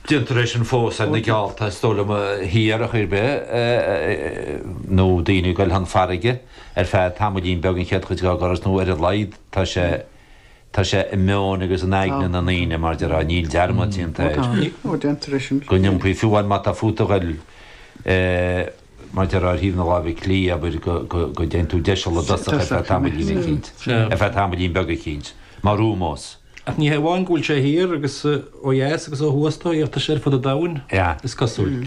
Déantar é sin fós ar na geallta, is dóigh liom, thiar, ar chaoi ar bith, nó daoine ag goil chun farraige ar feadh tamaillín beag an chéad chuid dá dturas, nó ar a laghad tá sé, tá sé i meon agus in aigne na ndaoine, mar a déarfá, níl dearmad déanta air, go n-iompaíonn, fiú amháin má tá fút a ghoil, mar a déarfá, ar thaobh na láimhe clí, abair, go, go, go dtéann tú deiseal i dtosach ar feadh tamaillín eicínt, ar feadh tamaillín beag eicínt, mar ómós. Ach ní hé amháin go bhfuil sé thiar agus ó dheas agus ó thuaidh ach tá sé ar fud an domhain, is cosúil.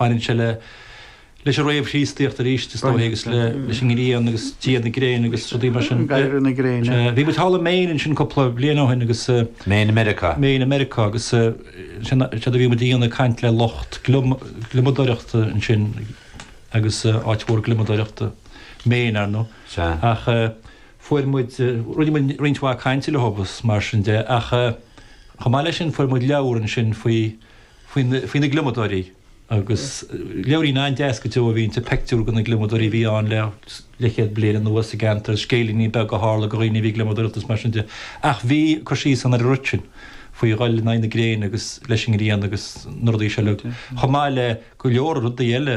Baineann sé leis an réamh-Chríostaíocht arís, is dóigh, agus leis an ngrian agus dia na gréine agus rudaí mar sin. Dia na gréine. Bhí muid thall i Maine ansin cúpla bliain ó shin agus. Maine i Meiriceá. Maine i Meiriceá agus sin a bhí muid a dhéanamh, caint le lucht gliomadóireachta ansin agus áit mhór gliomadóireachta Maine, ar ndóigh. Sea. Ach. fuair muid, rinne muid roinnt mhaith cainte leo agus mar sin de ach chomh maith leis sin fuair muid leabhar ansin faoi, faoin, faoi na gliomadóirí agus leabhairín an-deas go deo a bhí inti, peictiúir de na gliomadóirí a bhí ann le leithchéad bliain anuas sa gceantar, scéilíní beaga a tharla go dhaoine a bhí ag gliomadóireacht is mar sin de. Ach bhí cur síos ann ar an rud sin faoi dhul in aghaidh na gréine agus leis an ngrian agus na rudaí seo le, chomh maith le go leor rudaí eile.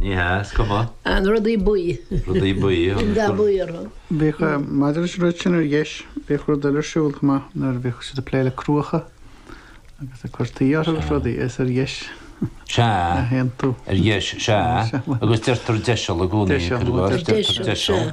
Ní hea, is cuma. An rudaí buí. Rudaí buí. Bíonn dath buí orthu. Bhíodh. Maidir leis an rud sin ar dheis, bhíodh rud eile ar siúl chomh maith nuair a bhíodh siad ag plé le cruacha agus ag cur tuí orthu agus rudaí. Is ar dheis. Sea. a théann tú. Ar dheis, sea. Agus deirtear deiseal i gcónaí. Deiseal. Deirtear deiseal.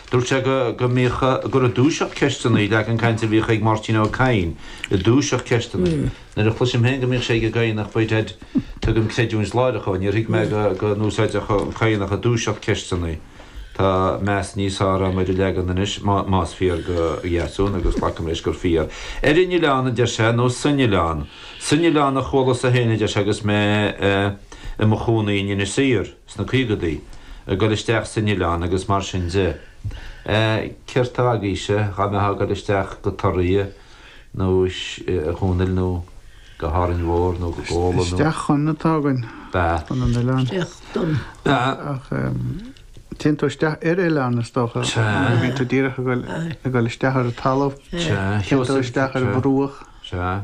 Dúirt sé go mbíodh gurb i dtúiseacht ceisteanna an leagan cainte a bhíodh ag Máirtín Ó Cadhain, i dtúiseacht ceisteanna. Nuair a chloisim féin go mbíodh sé ag an gCadhanach beidh said, tugaim creidiúint láithreach dhó, níor thuig mé go n-úsáidfeadh an Cadhanach i dtúiseacht ceisteanna. Tá meas níos fearr agam ar an leagan anois, más fíor go Dheasún, agus glacaim leis gur fíor. Ar an oileán, a deir sé, nó san oileán. San oileán a chualasa féin, a deir sé, agus mé i mo chónaí in Inis Oírr. sna caogadaí, ag goil isteach san oileán agus mar sin de. Céard tá agaibhse? Dhá mbeithá ag goil isteach go Toraigh ansin, a Chonaill nó go hÁrainn Mhór nó go Gola nó. Isteach chun atá againn. Ba. Chun an oileáin. Isteach don. Ba. Ach téann tú isteach ar oileán is dócha. Sea. Bíonn tú díreach ag goil, ag goil isteach ar an talamh. Sea. Téann tú isteach ar bhruach. Sea.